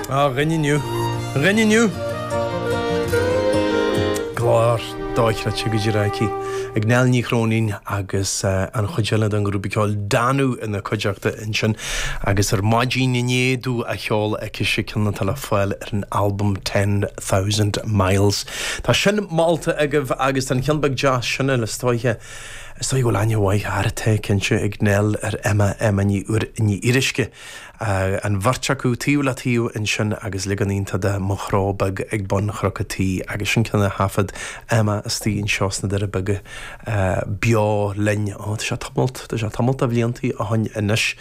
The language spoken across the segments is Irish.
Á, a dhuine inniu. A dhuine inniu! Glór dochreidte go díreach aici ag Nell Ní Chróinín agus an chuid eile den ghrúpa ceoil Danú ina cuideachta ansin agus Ar Maidin Inné Dom á cheol aicise, ceann atá le fáil ar an albam Ten Thousand Miles. Tá sin molta agaibh agus tá an ceann beag deas sin eile is dóiche. Is dóiche go bhfuil aithne mhaith ar, tá, cinnte, ag Nell ar Emma, Emma Ní Fhir Ní Fhíoruisce. an bheirt acu taobh le taobh ansin agus leagan iontach de Mo Chró Beag ag Bun Chnoc a' Tí agus sin ceann de thaifead Emma istigh anseo sna Doire Beaga beo linn ó tá sé tamalt, tá sé tamall de bhlianta ó shoin anois.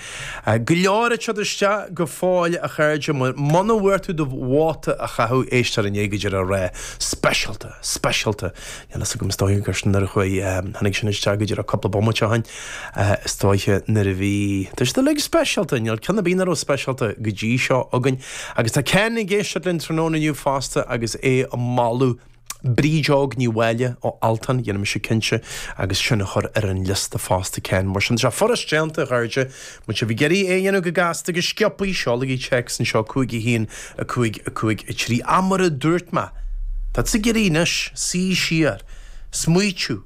Go leor ag teacht isteach go fóill a chairde, muna bhfuair tú do vóta a chaitheamh éisteoir inné go díreach ag rá speisialta, speisialta, Níl a fhios agam, is dóiche gur sin nuair a chuaigh, tháinig sin isteach go díreach cúpla bomaite ó shin, is dóiche nuair a bhí, tá siad uilig speisialta, níl ceann ar bith nach raibh speisialta go dtí seo againn. Agus tá Ken ag éisteacht linn tráthnóna inniu fosta agus é ag moladh Bríd Óg Ní Mháille ó Altan, dhéanfaidh mise cinnte agus sin a chur ar an liosta fosta Ken, mar sin tá sé furast déanta a chairde, Má tá sibh ag iarraidh é a dhéanamh go gasta go sciobthaí, seolaigí téacs anseo, 5 1 5 5 3. Ach mar a dúirt mé, tá tú ag iarraidh anois suí siar, smaoitiú.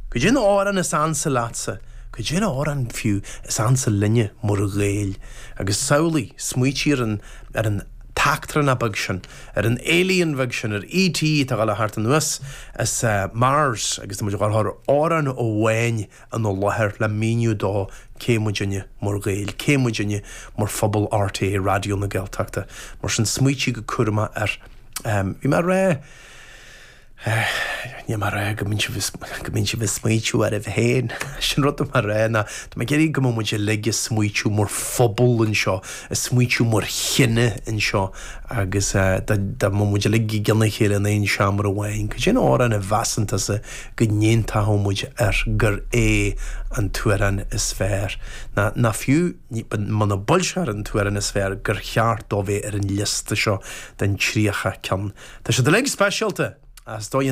Goidé an amhrán is ansa leatsa? Goidé an amhrán, fiú, is ansa linne, mar Ghaeil? Agus samhlaigh, smaoitigh ar an, ar an t-eachtrannach beag sin, ar an alien bheag sin, ar ET atá a' gabháil a theacht anuas as Mars agus tá muid a' gabháil a chur amhrán amháin, ina láthair le míniú dó cé muidinne mar Ghaeil, cé muidinne mar phobal RTÉ Raidió na Gaeltachta. Mar sin, smaoitigh go cúramach air. Bhí mé ag rá, níl mé ag rá go mbíonn sibh, go mbíonn sibh ag smaoitiú oraibh féin, sin rud atá mé a rá, ná, tá mé ag iarraidh go mbeadh muid uilig ag smaoitiú mar phobal anseo, ag smaoitiú mar chine anseo agus dá mbeadh muid uilig i gcionn a chéile in aon seomra amháin, cad é an amhrán a mheasann tusa, go n-aontódh muid air gur é an t-amhrán is fearr, ná, ná fiú, muna bhfuil sé ar an t-amhrán is fearr, gur cheart dó bheith ar an liosta seo den 30 ceann. Tá siad uilig speisialta, ach is dóigh,